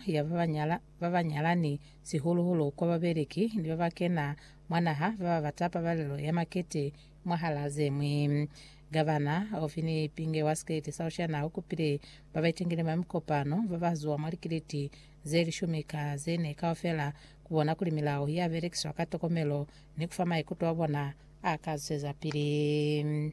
ya ba ba nyala, ba ba nyalani, sihulu-hulu kwa babeleki ni ba ba kena mwa naha ba ba bata pabalelo ya makete mwahal'a ze ñwi. Gavana Ofi ni Pinge wa Sikeleti sa Oceania u kupile ba ba itengile mwa mikopano ba ba zuwa mwa likeleti ze lishumi ka ze ne kaufela ku bona kuli milao ya belekiswa ka tokomelo ni ku fa maikuto a bona a ka zwezapili.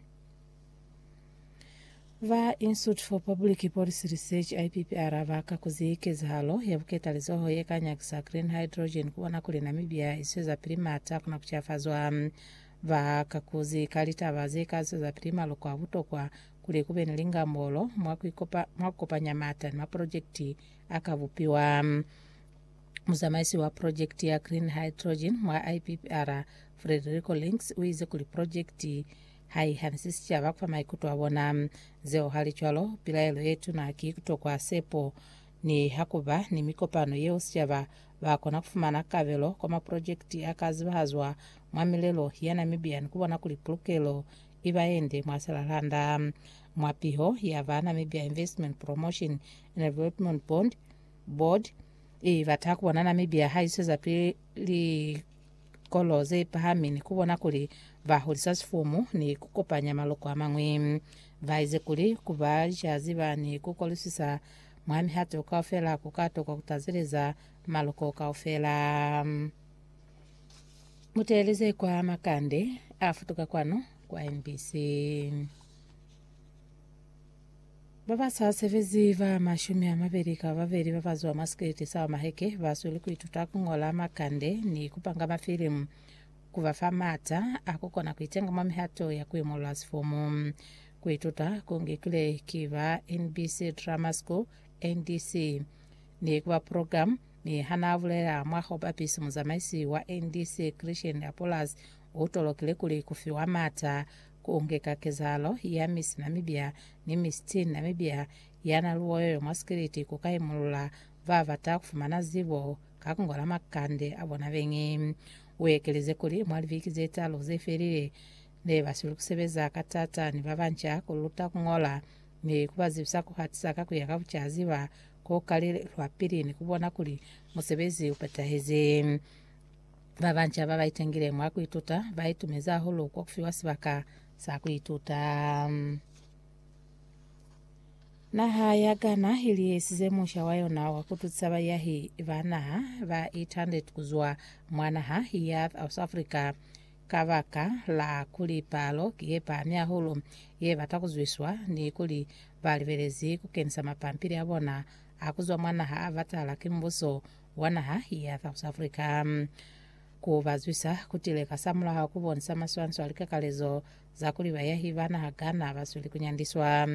Ba Institute for Public Policy Research, IPPR, ba kakuzi kezahalo ya buketalizoho ye ka nyakisa green hydrogen kubona kuli Namibia iswezapili mata kuna kucafazwa. Ba kakuzi ka litaba ze ka zwezapili maloko a butokwa kuli kube ni lingambolo mwa kukopanya mata ni maprojekiti a ka bupiwa. Muzamaisi wa projekiti ya green hydrogen mwa IPPR, Frederico Links, uize kuli projekiti Ha i hanisi sicaba fa maikuto a bona. Zeo hali cwalo, pilaelo ye tuna ki kutokwa sepo. Niha kuba ni mikopano yeo sicaba, bakona kufumana kabelo kwa maprojekiti a ka zibahazwa mwa milelo ya Namibia ni kubona kuli pulukelo iba yende mwa Selalanda. Mwa piho ya ba Namibia Investment Promotion and Development Board, i bata kubona Namibia ha iswezapili. likolo ze pahami ni ku bona kuli ba hulisa sifumu ni ku kopanya maloko a mañwi. Ba ize kuli ku ba licaziba ni ku kolisisa mwa mihato kaufela ku ka tokwa ku tazeleza maloko kaufela. Mu teeleze kwa makande a futuka kwanu kwa NBC. Ba ba sa sebezi ba mashumi a mabeli ka babeli ba ba zwa mwa sikeleti sa maheke ba sweli ku ituta ku ñola makande ni ku panga mafilimu ku ba fa maata a ku kona ku itenga mwa mihato ya ku imolola sifomo. Ku ituta ku ngikilwe ki ba NBC Drama School, NDC, ni ku ba program, mi ha naa bulela mwa ho bapisa muzamaisi wa NDC Christian Apollas u tolokile kuli ku fiwa maata Ku ngeka kezahalo ya misi Namibia ni misi Teen Namibia yana luoyoyo mwa sikiliti ku ka imulula ba bata ku fumana zibo ka ku ngola makande a bona beñi. U ekelize kuli, Mwa libeki ze talu ze felile, ne ba sweli ku sebeza ka taata ni ba banca ku luta ku ngola ni ku ba zibisa ku hatisa ka ku ya ka bucazi ba ku kalile lwa pili ni ku bona kuli musebezi u petahezi. Ba banca ba ba itengile mwa ku ituta ba itumezi hahulu kwa ku fiwa sibaka sa ku ituta. Naha ya Ghana i lihisize musha wa yona wa ku tusa baiyahi ba naha ba 800 ku zwa mwa naha ya South Africa kabaka la kuli palo ki ye pahami hahulu ye bata ku zwiswa ni kuli ba libelezi ku kenisa mapampili a bona a ku zwa mwa naha a batala ki mbuso wa naha ya South Africa ku ba zwisa ku tile kasamulaho ku bonisa maswaniso a likakalezo za kuli bayahi ba naha Ghana ba sweli ku nyandiswa.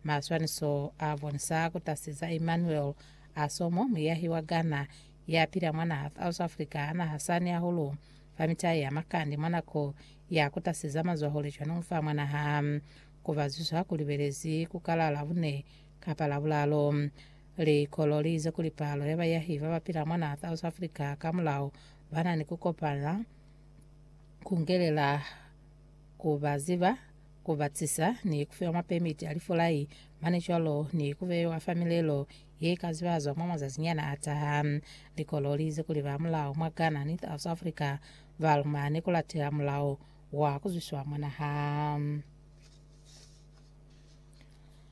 Maswaniso a bonisa ku tasiza Emmanuel Asomo, muyahi wa Ghana ya pila mwa naha South Africa, a naha sani hahulu fa mitai ya makande mwa nako ya ku tasiza mazwahule cwanong fa mwa naha. Ku ba zwisa ku libelezi ku kala Labune kapa Labulalo. Likolo li ize kuli palo ya bayahi ba ba pila mwa n'a South Africa ka mulao ba na ni ku kopana ku ngelela ku ba ziba, ku ba cisa, ni ku fiwa mapemiti a lifulai mane cwalo ni ku beiwa fa milelo ye ka zibazwa mwa mazazinyana a taha. Likolo li ize kuli ba mulao mwa Ghana ni South Africa ba lumane ku latela mulao wa ku zwiswa mwa naha.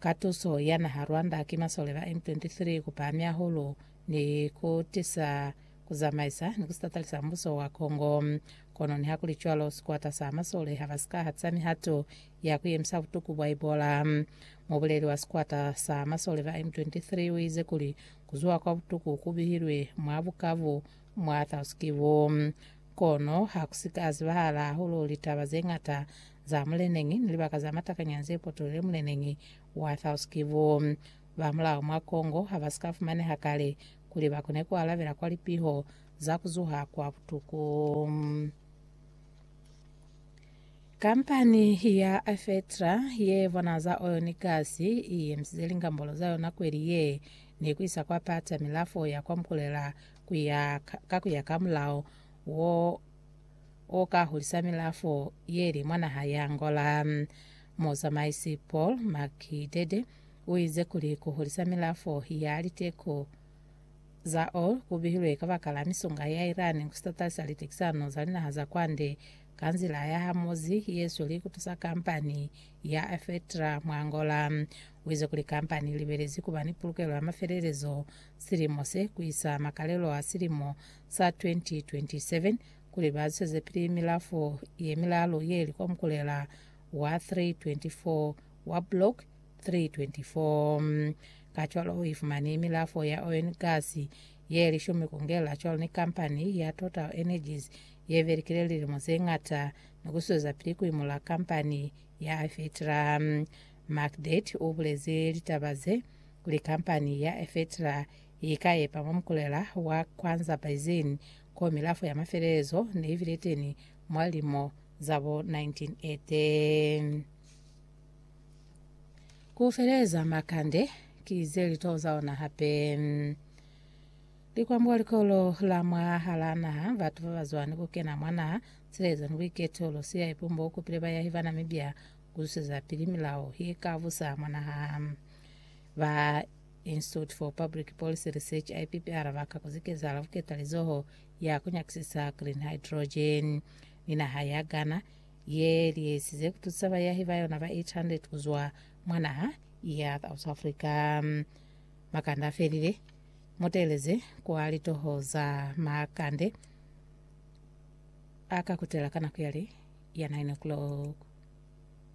Ka tuso ya naha Rwanda ki masole ba M23 ku pahami hahulu ni ku tisa ku zamaisa ni ku sitatalisa mbuso wa Congo. Kono nihakulicwalo, sikwata sa masole ha ba si ka hatisa mihato ya ku yemisa butuku bwa Ebola. Mubuleli wa sikwata sa masole ba M23 u ize kuli ku zuha kwa butuku ku bihilwe mwa bukabu mwa Thous-Kivu. Kono ha ku si ka zibahala hahulu litaba ze ñata za muleneñi ni libaka za matakanyana ze potolile muleneñi wa Thous Kivu. Ba mulao mwa Congo ha ba si ka fumaneha kale kuli ba kone ku alabela kwa lipiho za ku zuha kwa butuku. Kampani ya Afetra ye bona za oyo ni gasi i emisize lingambolo za yona kweli ye ni ku isa kwa pata milafo ya kwa Mukulela kuya ka kuya ka mulao wo o ka hulisa milafo yeli mwa naha ya Angola. Muzamaisi Paul Makidede uize kuli kuhulisa milafo ya liteko za oil kubihilwe kabakala misunga ya Iran kusitatalisa litekisano za linaha za kwande ka nzila ya hamozi yesweli kutusa kampani ya Afetra mwa Angola. Uize kuli kampani ilibelezi kuba ni pulukelo ya mafelelezo silimo se ku isa makalelo a silimo sa 2027 kuli ba zwezepili milafo ye milalu ye li komkulela wa 324 wa Block 324. Kacwalo u ifumani milafo ya oil ni gasi ye li shumi ku ngela cwalo ni kampani ya Total Energies ye belikile lilimo ze ñata ni ku swezapili ku imula kampani ya Afetra. Macdet u bulezi litaba ze Kuli kampani ya Efetra i ka epa mwa mukulela wa Kwanza Basin ko milafo ya mafelelezo ne i bile teni mwa lilimo za bo 1980. Ku feleleza makande ki ze litoo za ona hape. Likwambuka Likolo la mwahalaa naha, batu ba ba zwa ni ku kena mwa naha, silezo ni buiketo, lu siya ipumbo, u kupile bayahi bana mibya, ku zusezapili milao ye ka busa mwa naha. Ba Institute for Public Policy Research, IPPR, ba ka kuzi kezahala ku ketalizoho ya ku nyakisisa green hydrogen ni naha ya Ghana ye lihesize ku tusa bayahi ba yona ba 800 ku zwa mwa naha ya South Africa. Makande a felile, mu teeleze kwa litoho za makande a ka kutela ka nako ya li ya 9 o'clock.